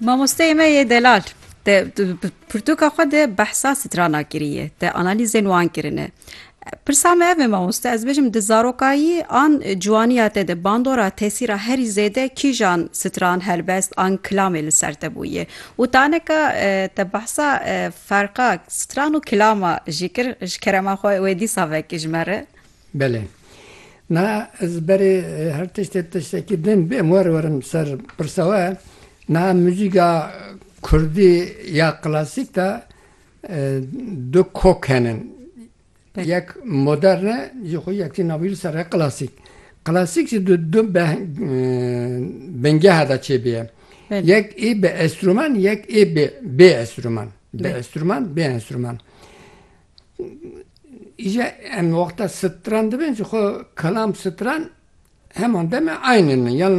Mamosteyê me yê delal te pirtûka xwe de behsa strana kiriye te analîzên wan kirine. Pirsa me ev e mamoste ez bêjim di zarokayî an ciwaniya te de bandora tesîra herî zêde kîjan stran helbest an kilamê li ser te bûye û taneka te behsa ferqa stran û kilama jî kir ji kerema xwe wê dîsa vekij me re. Belê. Niha ez berê her tiştê tiştekî din bê em were werin ser pirsa we. Niha muzîka kurdî ya klasîk de du kok henin. Yek modern e jî xwe yek jî navî li ser e klasîk. Klasîk jî di du bingeha de çêbîye. Yek ê bi enstrûman yek ê bê enstrûman. Bi enstrûman bê enstrûman. Îje em wexta stran dibin ji xwe kelam stran heman demê eyn in. Yan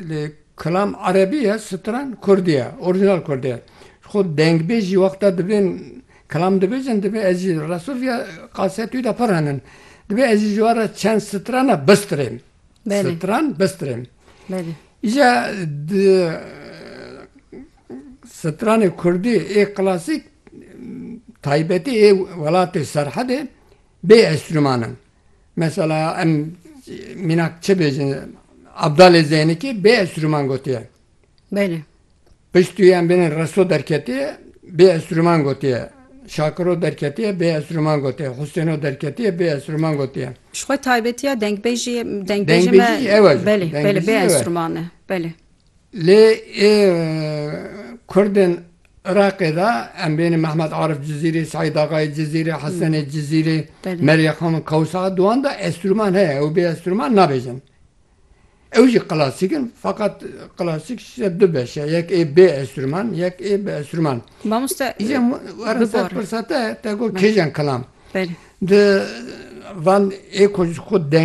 li kelam erebî ye stran kurdî ye. Orîjinal kurdî ye. Ji xwe dengbêjî wexta dibên kelam dibêjin divê ez jî Resul ya Qasiya Tûyî de pir henin. Divê ez jî ji we re çend strana bistirêm. Stran bistirêm. Îje di stranê kurdî ê klasîk Taybetî ê welatê Serhedê bê enstrûman in. Mesela em mînak çi bêjin Abdalê Zeynikî bê enstrûman gotiye. Belê. Piştû em bênin Reso derketiye bê enstrûman gotiye. Şakiro derketiye bê enstrûman gotiye. Husêno derketiye bê enstrûman gotiye. Ji xwe taybetiya dengbêjiyê dengbêjê me belê belê bê enstrûman e. Belê. Lê ê kurdên Iraqê de em bêne Mehmet Arif Cizîrê, Seîd Axayê Cizîrê, Hesenê Cizîrê, Merîye Xanım Kewsa, di wan de estrûman heye, ew bê estrûman nabêjin. Ew jî klasîk in feqet klasîk ji du beş e, yek ê bê estrûman, yek ê bi estrûman. Mamoste Îcar were ser pirsa te, te got kêjan kilam? Belê. Di van ê ku ji xwe deng.